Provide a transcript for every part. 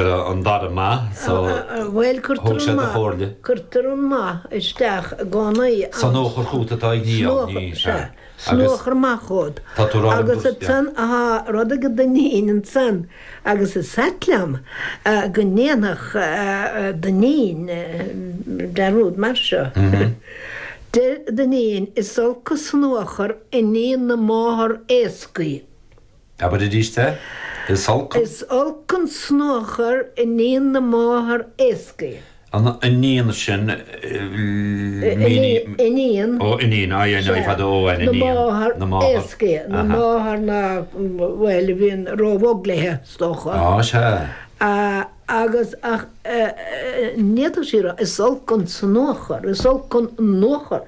an dara maith so thug sé do Chomhairle. Cuirtear an maith isteach i gcónaí ann. Sonuachar chugat atá i ndiaidh ní hea. Sonuachar maith chugat. Tá tú rá liom go. Tá rud ag Dinneen ansan agus is ait liom go ndéanfadh Dinneen dearúd mar seo. Deir Dinneen, is olc an sonuachar iníon na máthar éascaí. Abair aríst é, Is olc an. Is olc an snuachar iníon na máthar éascaidhe. an iníon sin, mhínigh. iníon. Ó, iníon, aye, aye, aye, fada, ó, an iníon. na máthar. na máthar. éascaidhe, na máthar ná, bhuel, a bhíonn róbhog léithe, is dócha. Á, sea. Agus ach n'fhéadfadh sí a rá, Is olc an snuachar, is olc an nuachar.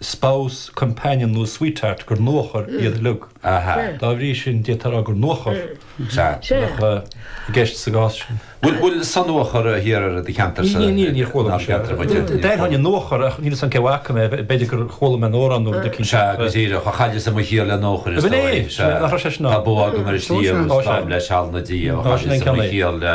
spouse, companion nó sweetheart gur nuachar iad uilig. Dá bhrí sin, d'fhéadfá a rá gur nuachar a bheadh i gceist sa gcás sin. Bhfuil sonuachar thiar ar do cheantar sa cheantar muid? D'aithneoinn an nuachar ach níl 'fhios a'm cé bhfaca mé, b'fhéidir gur chuala mé in amhrán nó rud eicínt. Sea, go díreach, chailleas mo chiall le nuachar is dóigh. Sea, tá bó agam ar an sliabh is táim le seal ina diaidh, chailleas mo chiall le.